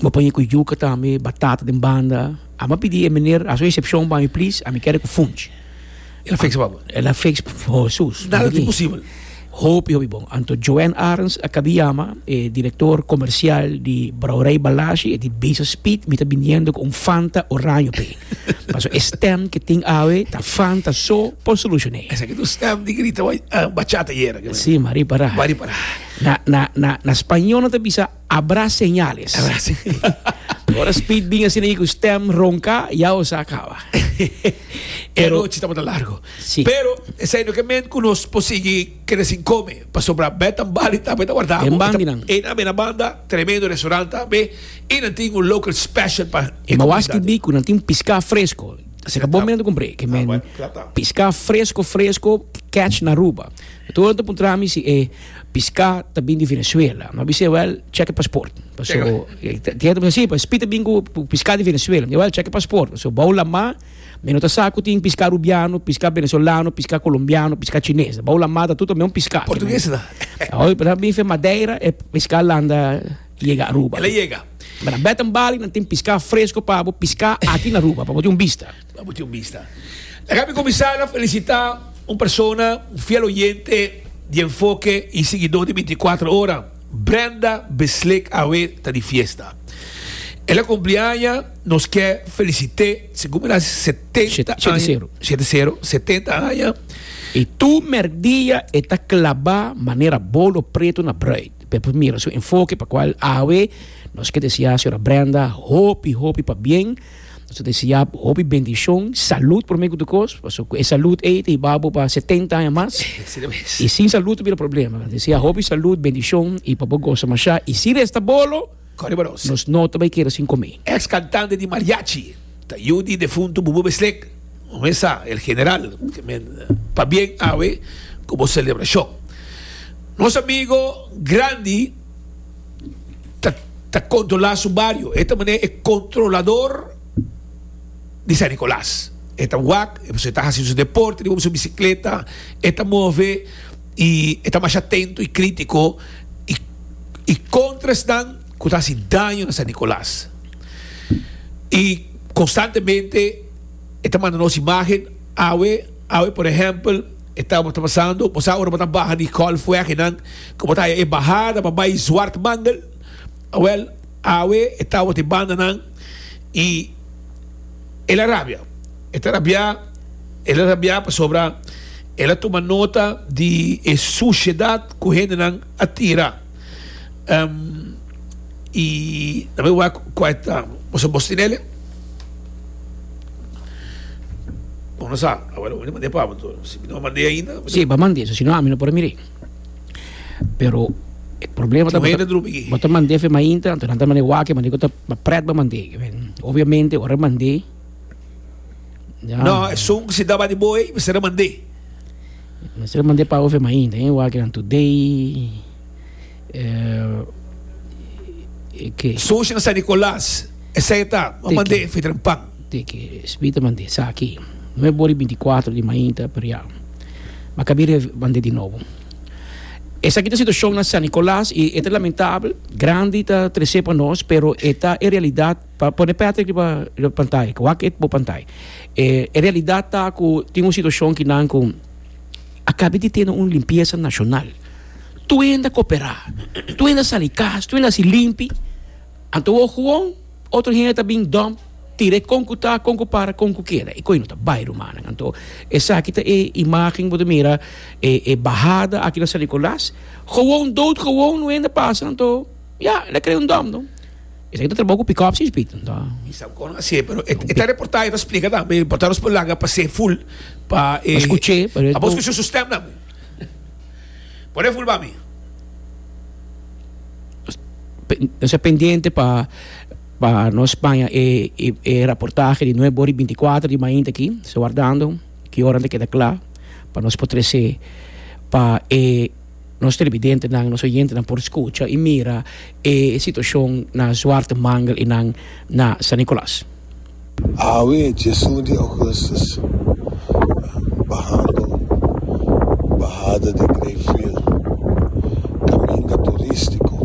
bo paña ku yuka tambe batata den banda a mi a pidi e meneer haso excepcion pa mi please a mi kere ku funch el a fiks pa bo el a fiks for hesus nada ta imposibel hopi hopi bon anto Joan Arens a kabi yama e director comercial di brouwerij Balashi e di Base Speed mi ta biniendo ku un fanta oraño pe paso e stem ku tin awe ta fanta so por solushone esaki ta un stem di grita bachata yera si mari para mari para. Na, na, na, na Spanje nan ta bisa abra señales. Abra se- Ora Speed bin asina i ku stem ronka, ya o sa kaba. E Pero- anochi tabata largo. Si. Pero, esei no ke men ku nos por sigui kere sin kome. Pasobra bè ta bali tambe ta wardá. Den bandi nan. E nan, e na banda, tremendo restaurant tambe. I nan tin un local special pa e Ma waski komunidat. di ku nan tin piská fresko. Asina bon men ta kumpré ke men Ah, bueno, klap dan. piská fresko fresko catch na Aruba. Tur nan ta puntra mi si e pisca ta bin di Venezuela. No a bis'e, Well, check e paspoort. Paso, e genta bisa, Si, pa Speed ta bin cu pisca di Venezuela. Mi di, Well, check e paspoort. Paso, bou lama, mi no ta sa cu tin pisca Rubiano, pisca Venezolano, pisca Colombiano, pisca Chines. Bou lama, ta tur ta meun pisca. Portuguese ta. Oye, pero nan bin fe Madeira, e pisca landa yega Aruba. El a yega. Nan beta bali, nan tin pisca fresco pa bo, pisca aki na Aruba, pa bo tin un bista. Abo tin un bista. Ta cabe cuminsa na felicita un persona, un fiel oyente di Enfoke y siguidor di binti cuatro ora. Brenda Besleek awe ta di fiesta. El a cumpli aña, nos ke felicite segun mi na setenta Shete aña, sero. shete sero, setenta aña. Y tu merk dia e ta claba manera bolo preto na bruid. P'e por mira su enfoke, pa cual awe nos ke desea a señora Brenda hopi hopi pa bien. Nos ta deseá bo hopi bendishon, salud promé ku tur kos, pasobra ku e salud ei ta hibá bo pa setenta aña mas, i sin salud ta bira problema. Ta deseá hopi salud, bendishon i pa bo gosa mashá. I si resta bolo, nos no ta bai keda sin komé. Ex kantante di mariachi ta yu di defuntu Bubu Beslek, un mes sa, el general, pabien awe ku bo selebrashon. Nos amigo grandi. ta, ta controla su bario. E ta mane e controlador di San Nicolas. E ta wak, e ta hasi su deporte riba su bicicleta, e ta move y e ta masha atento y critico y, y contra esnan cu ta hasi daño na San Nicolas. Y constantemente e ta manda nos imagen, awe, awe por ehempel, e ta, ta pasando, bo sa ora bo ta baha di Hallfweg y nan, Komo ta haya e bahada pa bai Zwart Mandel, awel, awe e tawat e bandanan i el a rabia. E ta rabiá, el a rabiá pasobra el a tuma nota di e sushedat ku hendenan a tira. I na me wak kua e ta, boso bos tin ele? Bon, no sa, awel, mi no mand'é pa bo, si mi no mand'é ainda, mi ta. Sí, bo mand'é, so si no ami no por a mir'é. Pero e problema ta Tuwele drupi ki. bota mandé fe ma intra, anto nan ta mandé wake, mandé kota ba pret ba mandé. Obviamente ora mandé ya No, e sung si daba di boy, mi sera mandé. mi sera mandé pa fe ma intra, eh, wake nan today. Eh, e ke. Sushi na San Nicolas. Esei ta, M'a mand'é fi dren pan. Te ke Spiritu ta mand'é, Sa akí, no e bor di binticuatro di mainta p'riá, ma ka bira e mand'é di nobo. Esaki ta situashon na San Nicolas i e ta lamentabel, grandi ta tres'é pa nos, pero e ta e realidat. Pa pone Patrick riba e pantai, ku wak e bo pantai. E e realidat ta ku tin un situashon ki nan ku a kabe di tene un limpiesa nashonal. Tuenda koperá, tuenda sali kas, tuenda hasi limpi. Anto wou gewoon otro hende ta bin dump, tira e kon ku ta, kon ku para, kon ku keda. E koe no ta bai, rumannan. Anto, esaki ta e imágen ku bo ta mira, e, e bahada aki na San Nicolas. Gewoon, dood gewoon un hende pasa, anto, ya, el a krea un dump, no. Esaki ta trabou ku pickups i esbit, anto. Mi sa kon hasié, pero e, e ta reportá, e ta splika tambe. E reportá nos por langa pas'é ful pa e. Nos kuch'é, pero e. Abo nos kuch'é su stem tambe. Por e fulba mi. Nos ta pendiente pa pa nos paña e e raportahe di nuevo ori binti kuater di mainta aki so wardando ki ora nan ta keda kla pa nos por trese pa e nos televidentenan nos oyentenan por skucha i mira e situashon na Zwarte Mangel i nan na San Nikolas. Awe, djesun di augustus, bahando bahada di Greyville, kaminda turístiko.